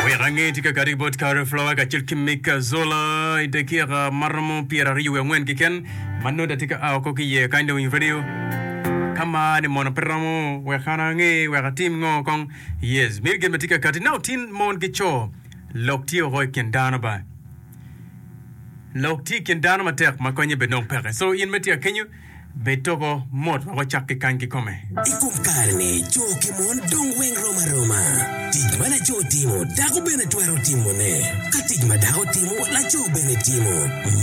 Wek ange tika kadi bot Carol Flower kacel ki Mick Zola i dakika ma romo pyeraryo wiye angwen keken ma nongo da tye ka a woko ki iye kany dong i redio. Ka mani mono pe romo, wek an ange wek atim ngo kong? Yes, miyo gin ma tye ka kati nao tin mon ki co. Lok tye woko i kin dano ba. Lok tye i kin dano matek ma konye bene dong peke. So in ma itye ka kenyo, Bed togo mot wek wacak ki kany kikome. I kom kare-ni, co ki mon dong weng rom aroma. Tic ma laco timo, dako bene twero timone. Ka tic ma dako timo, laco bene timo.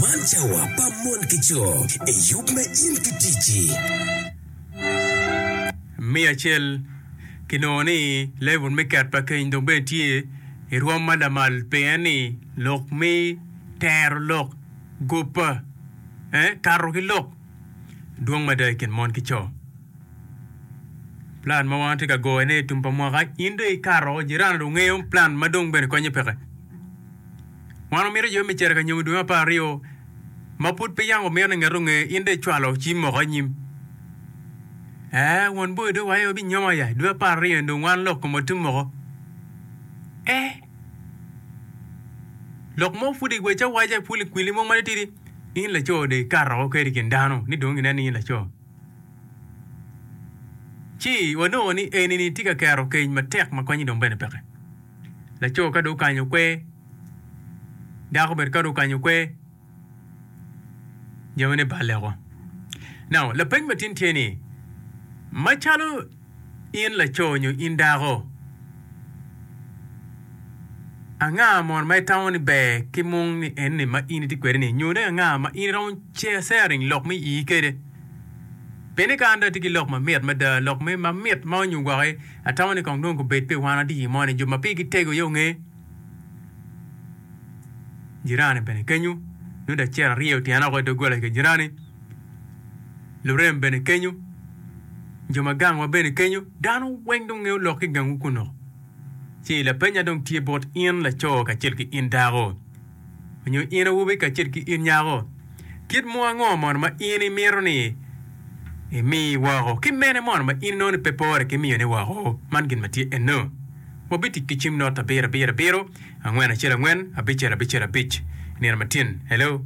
Man cawa pa mon ki co. Eyub me in ki ticci. Me acel, kinongo ni level me ket pa keny dong bene tye i rwom ma lamal pien ni lok me tero lok gobba. ee kato ki lok dwong mada i kin mon ki co. Plan ma wan watye ka goyone i tum pa mwaka, in dong ikato, jirani dong ngeyo plan ma dong bene konye peke. Wan wamito jo me cere ka nyomo dwe me apar aryo ma pud pe yam wamito ni ngat onge, in dong icwalo ci moko anyim. Ee, won boyo dong waye wabinyomo aya i dwe me apar aryo-ni dong wan lok komwa tum moko. Ee. Lok mo pud iwac awaca ipul i kwili mo matitidi, in laco dong ikato woko kwede i kin dano ni dong gineno ni in laco. Ci wanongo ni eni-ni tye ka kero keny matek ma konye dong bene peke. Laco ka dong okanyo kwer, dako bene ka dong okanyo kwer, Jami ni balle woko. Now, lapeny matin tye ni, macalo in laco nyo in dako, anga mono ma itamo ni ber ki mung ni enni ma in itye kwede ni? Nyo dong anga ma in iromo sharing lok me ii kede? Peni ka an dong atye ki lok mamit mada, lok me mamit ma onyo gwaki, atamo ni kong dong gubed pi wan adiyi moni, jo ma pigi tego aye onge. jirani bene kenyu, nongo dacel aryo otyen oko i doggola i ka jirani, lurem bene kenyu, jo ma gangwa bene kenyu, dano weng dong nge olok ki gangwu kunnu. Ci lapenya dong tye bot in laco kacel ki in dako. Nyo in awobi kacel ki in nyako, kit mo ango mono ma in imito ni imi woko? Ki mene mono ma in inongo ni pe pore ki miyone woko? Man gin ma tye eno, Wabitic ki cim not abiro abiro abiro, angwen acel angwen, abicel abicel abic. Nino matin. Hello.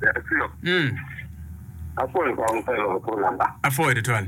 Yaa Ciro, Mm, apwoyo kong pe loko phone number. apwoyo tutwal.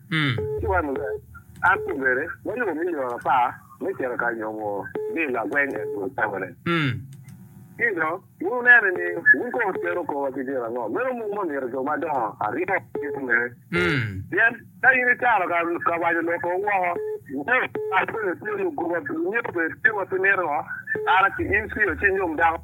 Ci wan munu, an kun bene, wayubo milion apar me cito ka nyomo ni lagweng en dul tamane. Ci dong, wunene ni wun kong wutwero kowa ki gin ango? Meno mung ma omyero jo madongo aryo gitye mere. Pien ka in itaro ka wanyo lok kong woko, nyo, kadi bed itye lugoba, nyo bed kit ma pe mito ngo, kara ki in ci oci nyom dako.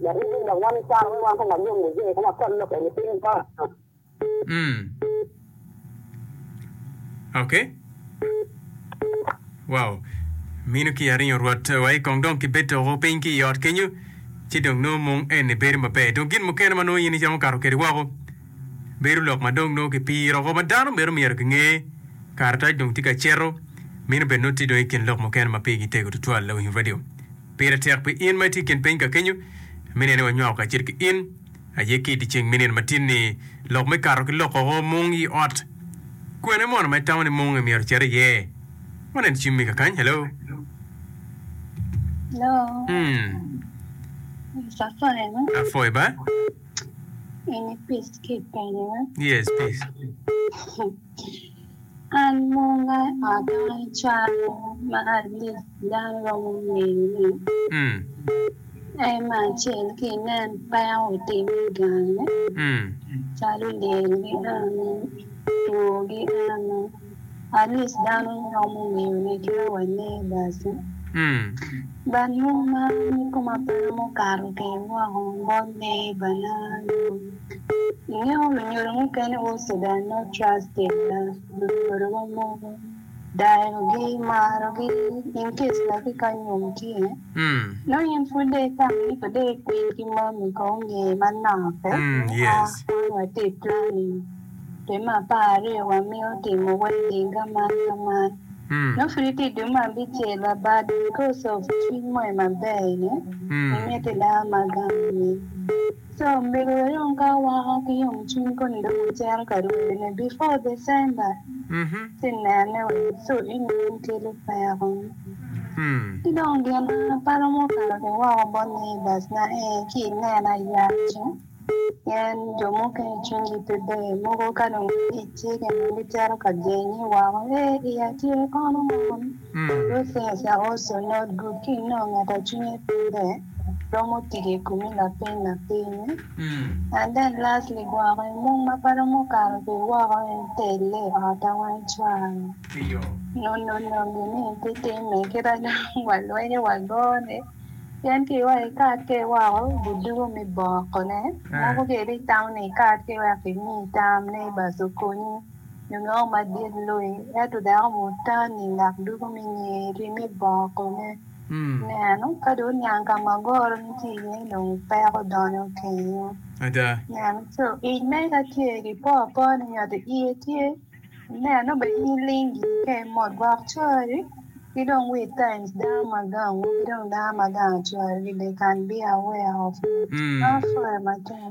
Waribi dok wami caro me wan kong wa yom niye kong wa kony lok eni piny kong. Mm. Okay. Wow. Minu ki aringo rwot wa i kong dong ki bed toko piny ki i ot kenyo ci dong nongo mung eni bedo maber. Dong gin mukene ma nongo in icamo kato kedi woko bedo lok ma dong nongo ki piro oko ma dano meno myero ginge. Karatac dong tye ka ceto. Minu bene nongo tye dong i kin lok mukene ma pigi tego tutwal lawiny radio. Pire tek pi in ma itye i kin piny ka kenyo me nene wanywako kacel ki in aye ki i dyeceng me nino matin-ni lok me kato ki lokoko mung i ot. Kwene mono ma itamo ni mung-nge myero ocit iye? Wanen cim me kakany. Hello? An munga adongo calo ma atic dano romo ngeyone, en me acel ki inen peko otimme i gange calo lyel giame, two giame at lic dano romo ngeyone ki ma wangeyo paco bad munga kikome pe romo kato ki woko bot neibana. Ingeyo lunyodo mukene wo Sudan ma Charles Taylor lunyodo wa mogo dayo gi maro gi in case ma ki ka nyom tye nongo in pud dong itamo ni pe dong ikwiny ki mami ka onge manok pe yes wun wa tye planning dwe me apar aryo wa mito timo wedding ka man ka man nongo pud itye dwe me abicel wa but because of cwiny mogo maber ni imiti daa ma gam ni So omego wa dong ka wako ki yom cwiny koni dong wa cito ka rwode ne before December ci nene wa niso ni man kelo peko ki dong gin pala ma okato ki woko bot neighbors na ee ci inena yacu pien jo mukene cwiny gi pe ber mogo ka dong gitye kene gicito ka genye woko ee iya tye kono man. Rufus Awoso Not Good Ki inongo ngat a cwinye pe ber romo tic i kumi lapeny ma piny-nyi. And then lastly gwoko i mung ma pe romo kato ki woko en telle i ot a wang cware. Nunu nongi ni pe timme kit a dong walwenyo wagone pien ki iwaco i kat ke woko gudugo mi bokone. Moko kedi itamo ni ikat ki wek kimi tam ni bas okonyi. Lunyogo madit lui, ento dako mutani lak dugo me nyer ri me bongo kome. Nen, ka dong oniang ka ma goro ni tye iye, dong peko donyo kenyo. Nen, co ic mere ka tye ki po apoa ni nyoto iye tye, inen, nongo bene in iling giri ka imot gwok cori, ki dong wit ka i dano ma gangu, ki dong dano ma gango cori bene, kan be aware of it. Meno pwore matek.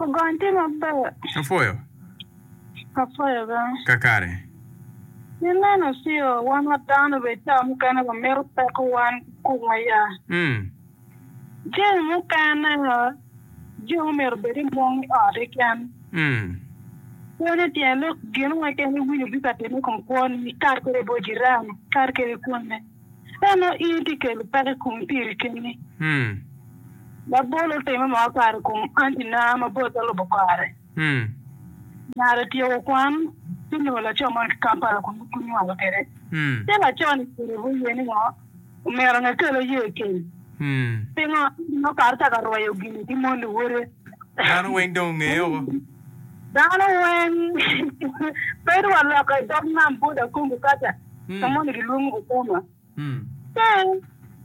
Ogon tye maber. Apwoyo. Apwoyo bene. Kakare. Pi meno coo, wan wa dano bene caa mukene wa mito peko wan ki kum aya. Jami mukene jo omyero obed i mung i ot keken. Pe ni tyen lok gin mo keken iwinyo bika timi i kom kwoni, kadi kede bot jirani, kadi kede kwone. Ka nongo in itye ka kelo peko i kom piri keni, labol otime mono kare i kom antina ma bot te lubo kare. Nyare otyeko kwan ci onongo laco moni ki Kampala kun nongo gunywalo kwede. Ci laco-ni orubo iye ni ngo? Omyero nongo ekel oye i keny. Pingo? Nongo kato cako arweyo gin-ni ki mon luwote. Dano weng dong ongeye woko. Dano weng bedo wa loka i dog nam bot Akongo kaca ka moni gilwongo Bukama. Ka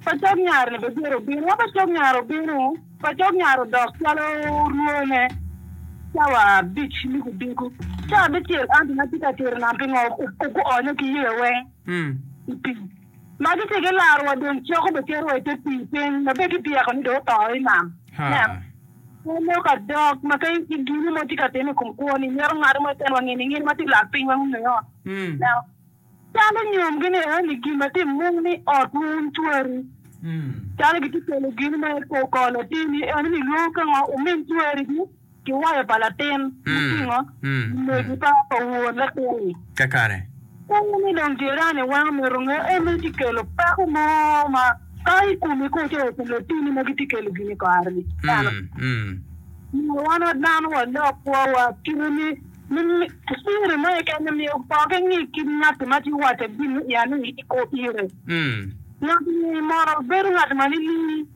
pacok nyar-ni bedyere obino, ka pacok nyar obino, pacok nyar odok calo rwone cawa abic me odiko. Cawa abicel an dong atye ka cito i nam pingo guonyo ki yeya weng i pii. Ma gitye ki larowa dong coko be keto wa i te pii piny ma bed ibyeko ni dong oto i nam. Nen, pe lok adok ma ka i gini mo tye ka time i kom kwo ni mito ngado mo itenwa ngini ngini ma tye lak piny wa ngungu i ot. Neno, calo nyom gi ni eni gin ma tye mung ni ot wu wun cweri. Calo gitye kelo gini ma i kor kor latin ni eni ni lwongo ka ngo umin cweri gi. ki wayo pa latin mutingo omegi pa won latin-ni. Kakare. Kadi ni dong jirani weng omito nge, en meno tye kelo peko mo ma kato i komi koo ci wa i kom latinni ma gitye kelo gin i kare-ni. Dano nyo wan wa dano walok kwowa kite ni siri mo keken-ni myero opokke ni ki ngat-ti ma tye waco gin mo iye ni iko pire. Ngat-ti mono bedo ngat ma nining?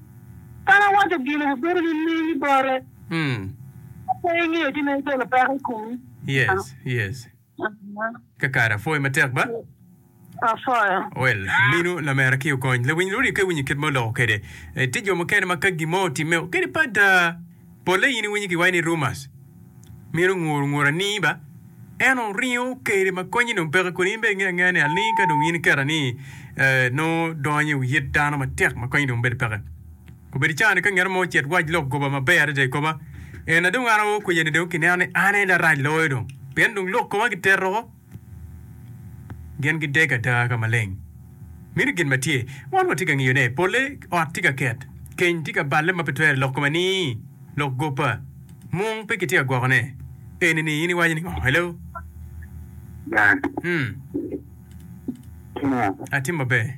Kadi awaco gin-ni wubedo nining i bote? Pe ingeyo ci meno kelo peko i komi. Yes, yes. Kakare apwoyi matek ba. Apwoyo. Well, minu lamera ki okony. Lawiny luriko i winyi kit ma oloko kede. Eh, tye jo mukene ma ka gimo otimme kede pa da. Pole in iwinyi giwayi ni rumors. Minu nguru nguru aningi ba. En oringo kede ma konyi dong peke kodi in bene inge angeya ni aningi ka dong in iketa ni eh, nongo donyo i wi yet dano matek ma konyi dong bedo peke. Obedo cangane ka ngat mo ocit wac lok goba maber adada i koma. En na dong an aoo kwiyeni dong kineno ni an aye larac loyo dong, pien dong lok koma giteto woko. Gin gidege ada ka maleng. Meno gin ma tye. Wan watye ka ngiyone. Polle ot tye ka ket. Keny tye ka balle ma pe twere lok koma ni, Lok goba. Mung pe kitye ka gwokone. Eni ni in iwaco ni ngo? Hello? Dan. Hmm. Itimo ngo? Atimo maber.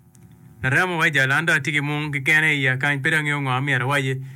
Laremo wa i Jalandha atye ki mung kekene i iya kany pe dong angeyo ngo amyero awaci.